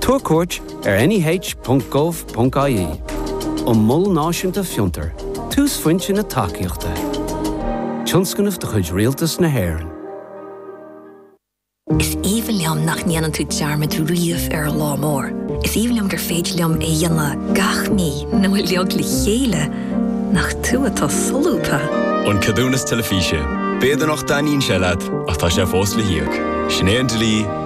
Tabhair cuairt ar neh.gov.ie um Mol Náisiúnta Fiontar, túsphointe na tacaíochta. Tionscnamh de chuid Rialtas na hÉireann. Is aoibhinn liom nach ndéanann tú dearmad riamh ar lá mór. Is aoibhinn liom gur féidir liom é a dhéanamh gach mí nó uiliog le chéile nach tú atá solúbtha. An Ceadúnas Teilifíse. B'fhéidir nach dtaitníonn sé leat ach tá sé fós le híoc. Sin é an dlí.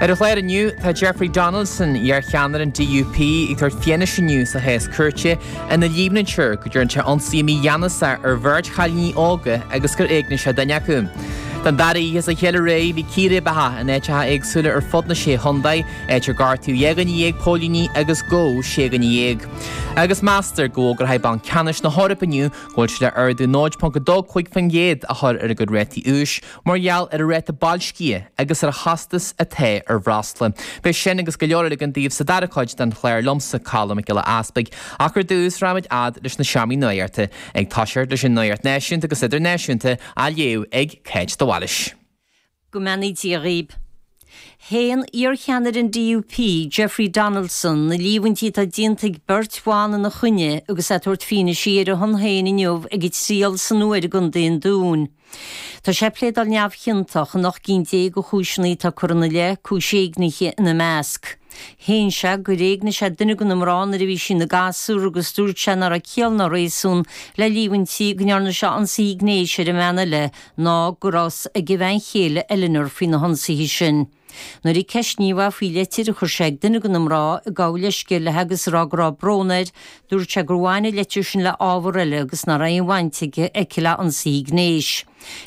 Ar an chlár inniu, tá Jeffrey Donaldson, iar-cheannaire an DUP, ag tabhairt fianaise inniu sa chás cúirte ina líomhnaítear go dtearn sé ionsaí mígheanasach ar bheirt chailíní óga agus gur éignigh sé duine acu. Don dara oíche as a chéile réidh, bhí círéibeacha in áiteacha éagsúla ar fud na Sé Chontae, áit ar gortaíodh dhá dhuine dhéag póilíní agus gabhadh sé dhuine dhéag. Agus meastar go bhfógróidh Banc Ceannais na hEorpa inniu go bhfuil sé le ardú 0.25% a chur ar a gcuid rátaí úis, Mar gheall ar an ráta boilscithe agus ar an chostas atá ar bhreosla. Beidh sin agus go leor eile againn daoibh sa dara cuid den chlár liomsa, Colm Mac Giolla Easpaig, ach ar dtús raghaimid fhad leis na seomraí nuachta, ag toiseacht leis an nuacht náisiúnta agus idirnáisiúnta, á léamh ag Cáit de Bhailis. Go mbeannaí Dia dhaoib. Shéan iarcheannaire an DUP, Jeffrey Donaldson, na líomhaintí atá déanta ag beirt bhan ina choinne agus é ag tabhairt fianaise ar a shon féin inniu ag a thriail san Iúr i gContae an Dúin. Tá sé ag pléadáil neamhchiontach in 18 gcinn de chúiseanna atá curtha ina leith, cúis éignithe ina measc. Shéan sé gur éignigh sé duine de na mná nuair a bhí sí ina gasúr agus dúirt sé nach raibh ciall ná réasún le líomhaintí go ndearna sé ionsaithe gnéis ar an bhean eile ná go raibh a fhios ag a bhean chéile Eleanor faoi na hionsaithe sin. Nuair a ceisníodh é faoi leitir a chuir sé ag duine de na mná ag gabháil leithscéil léi agus a rá go raibh brón air, dúirt sé gur bhain an leitir sin le hábhar eile agus nach raibh aon bhaint aici le hionsaithe gnéis.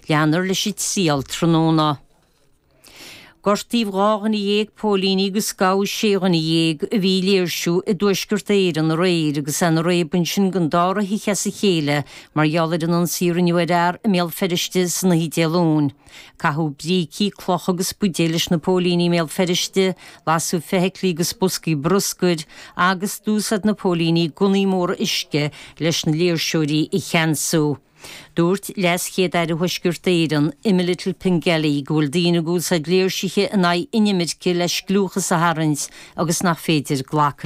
Leanfar leis an triail tráthnóna. Gortaíodh dhá dhuine dhéag póilíní agus gabhadh sé dhuine dhéag a bhí ag léirsiú i dTuaisceart Éireann aréir agus é ina raic ansin don dara hoíche as a chéile mar gheall ar an ionsaí a rinneadh ar fhear i mBéal Feirste san oíche Dé Luain. Caitheadh brící, clocha agus buidéil leis na póilíní i mBéal Feirste, lasadh feithiclí agus boscaí bruscair, agus d'úsáid na póilíní gunnaí móra uisce leis na léirseoirí a cheansú. Dúirt LeasChéad-Aire Thuaisceart Éireann, Emma Little-Pengelly, go bhfuil daoine ag úsáid léirsithe in aghaidh inimirce le scliúchas a tharraingt agus nach féidir glacadh